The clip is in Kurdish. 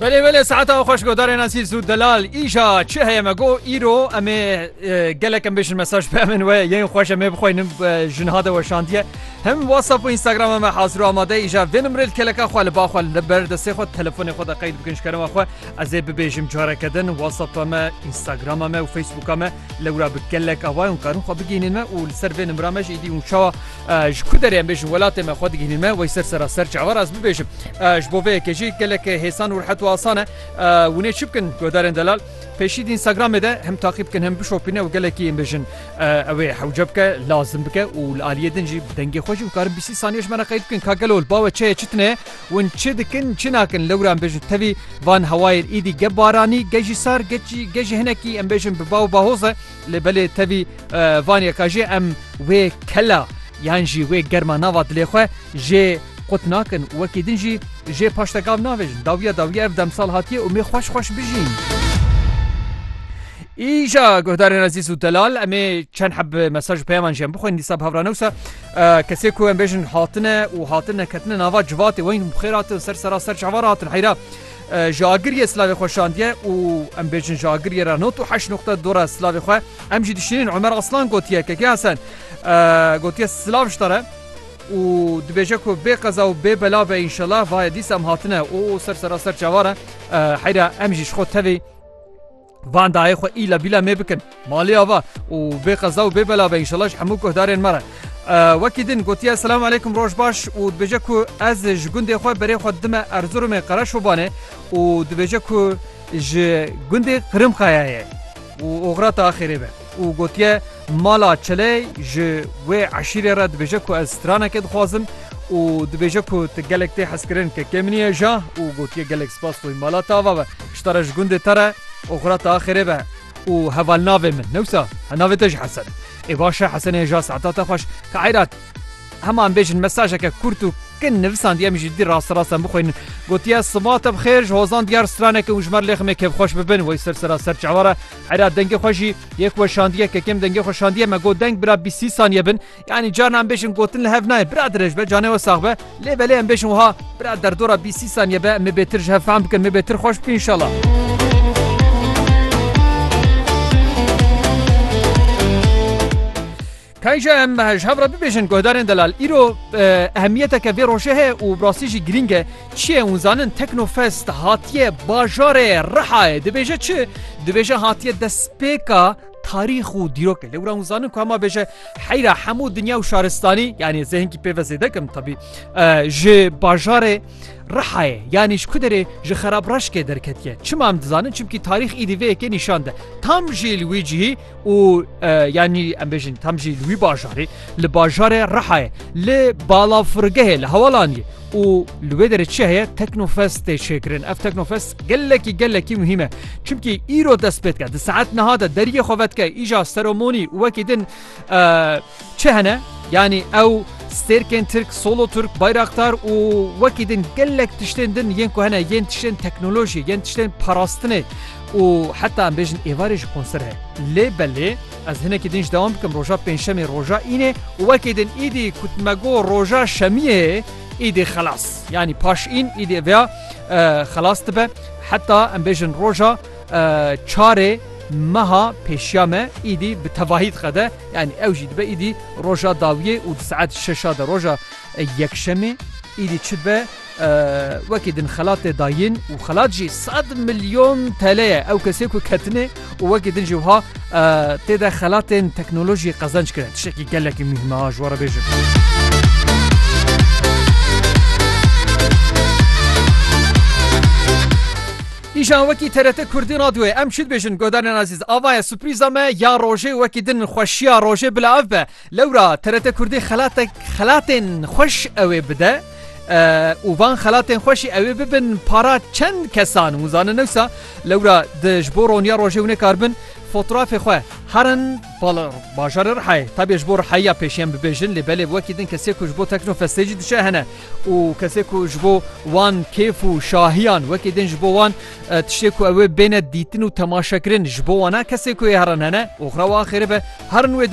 Belê belê saeta xweş godarê nasîr zû delal îja çi heye me got îro em ê gelek em bêjin mesaj be min we yên xweş em ê bixweynin jinha de weşandiye hem whatsapp û instagram me hazir amade îja vê nimrê li keleka xwe li baxwe li ber destê xwe telefonê xwe de qeyd bikin ji kerema xwe ez ê bibêjim careke din whatsapp me instagrama me û facebooka me lewra bi gelek awa û karin xwe bigînin me û li ser vê nimra me jî îdî û çawa Ji ku derê em bêjin welatê me xwe digihînin me wey ser sera ser çawa re ez bibêjim. Ji bo vê yekê jî gelek hêsan û rihet û asan e. Winê çi bikin guhdarên delal pêşî di Instagramê de hem taqî bikin hem bişopîne û gelekî em bêjin ew ê hewce bike, lazim bike û li aliyê din jî bi dengê xwe jî bikarin bîsî saniye ji me re qeyd bikin ka gelo li bawe çeye çi tune win çi dikin çi nakin lewra em bêjin tevî van hewayên îdî ge baranî ge jî sar ge jî hinekî em bêjin bi baw bahoz e. Lê belê tevî vaniye ka jê em wê kela yan jî wê germa nava dilê xwe jê qut nakin û wekî din jî jê paş te gav navêjin. Dawiya dawiya ev demsal hatiye û mê xweş xweş bijîn. Îja guhdarên ezîz û delal em ê çend heb mesaj û peyaman jî em bixwînin dîsa bi hevrane wisa kesê ku em bêjin hatine û hatine ketine nava civatê weyîn xêr hatin ser sera ser çavar hatin heyra Ji agiriyê silavê xwe şandiye û em bêjin ji agiriyê re nod û heşt noqte dora silavê xwe em jî dişînin Omer Aslan gotiye Keke Hesen gotiye silav ji te re û dibêje ku bê qeza û bê bela be înşela vaye dîsa em hatine û ser sera ser çavan e heyra em jî ji xwe tevî Van dayê xwe îla bîla mê bikin malê ava û bê qeza û bê bela be înşallah ji hemû guhdarên me re. Wekî din gotiye selam aleykum roj baş û dibêje ku ez ji gundê xwe berê xwe dime Erzurumê Qereşobanê û dibêje ku ji gundê Qirimqayayê û oxira te axêrê be û gotiye Mala Çiley ji wê eşîrê re dibêje ku ez stranekê dixwazim û dibêje ku tu gelek tê hezkirin kekê min ye ja û gotiye gelek spas xwe mala te ava be. Pişta re ji gundê te re oxira te a xêrê be. Û heval navê min newsa he navê te jî Hesen e. Ê baş e Hesenê ja saeta te xweş. Kairat hema em bêjin mesajeke kurt û kin nivisandî em jî dî raste rast em bixwînin. Gotiye siba te bi xêr ji hozan diyar straneke û ji mer lêximê kêfxweş bibin wey ser sera serçava re. Hera dengê xwe jî yê ku we şandiye kekem dengê xwe şandiye me got deng bira bîst sî saniye bin yanî carna em bêjin gotin li hev nayê bira dirêj be canê we sax be lê belê em bêjin wiha bira derdora bîst sî saniye be me bêtir ji hev fehm bikin me bêtir xweş bike inşallah. Tayî jî em ji hev re bibêjin guhdarên delal îro ehemiyeteke vê rojê heye û bi rastî jî girîng e. Çi ye hûn zanin Teknofest hatiye bajarê Rihayê dibêje çi? Dibêje hatiye destpêka tarîx û dîrokê. Lê wira hûn zanin ku hema bêje heyra hemû dinya û şaristanî yanî zê hinkî pê ve zêde kim tebî ji bajarê Rihayê yanî ji ku derê ji xerabreşkê derketiye. Çima em dizanin çimkî tarîx îdî vê yekê nîşan de. Tam jî li wî cihî û yanî em bêjin tam jî li wî bajarê li bajarê rehayê li balafirgehê li hewalanî û li wê derê çi heye teknofest tê çêkirin ev teknofest gelekî gelekî muhîm e çimkî îro dest pêtke di saet niha de deriyê xevetke îja seromonî wekî din Çi hene? Yanî ew stêrkên Tirk, solo Turk, Bayraktar û wekî din gelek tiştên din yên ku hene yên tiştên teknolojî, yên tiştên parastinê û heta em bêjin êvarê jî konser heye. Lê belê ez hinekî din jî dewam bikim roja pêncşemê roja înê û wekî din îdî ku tu me got roja şemiyê ye îdî xelas yanî paş în îdî vêya xelas dibe heta em bêjin roja Çarê meha pêşiya me îdî bi tevahî diqede, yanî ew jî dibe îdî roja dawiyê û di saet şeşa de roja Yekşemê îdî çi dibe wekî din xelat tê dayîn û xelat jî sed milyon TL ye. Ew kesê ku ketine û wekî din jî wiha tê de xelatên teknolojiyê qezenc kire. Tiştekî gelekî muhîm e ha ji we re bêjim. Îjan wekî TRT Kurdî Radyoyê em çi dibêjin godarên azîz ava ye suprîza me ya rojê wekî din xweşiya rojê bila ev be lewra TRT Kurdî xelatek xelatên xweş ewê bide û van xelatên xweşî ewê bibin para çend kesan hûn zanin newsa lewra di ji bo roniya rojê hûnê kar bin fotoğrafê xwe herin bala bajarê rihayê tabê ji bo rihayiya pêşiyan bibêjin lê belê wekî din kesê ku ji bo teknofestê jî diçe hene û kesê ku ji bo wan kêf û şahiyan wekî din ji bo wan tiştê ku ew ê bêne dîtin û temaşekirin ji bo wan e, kesê ku ê herin hene û xwe wan xêrê be herin wê derê.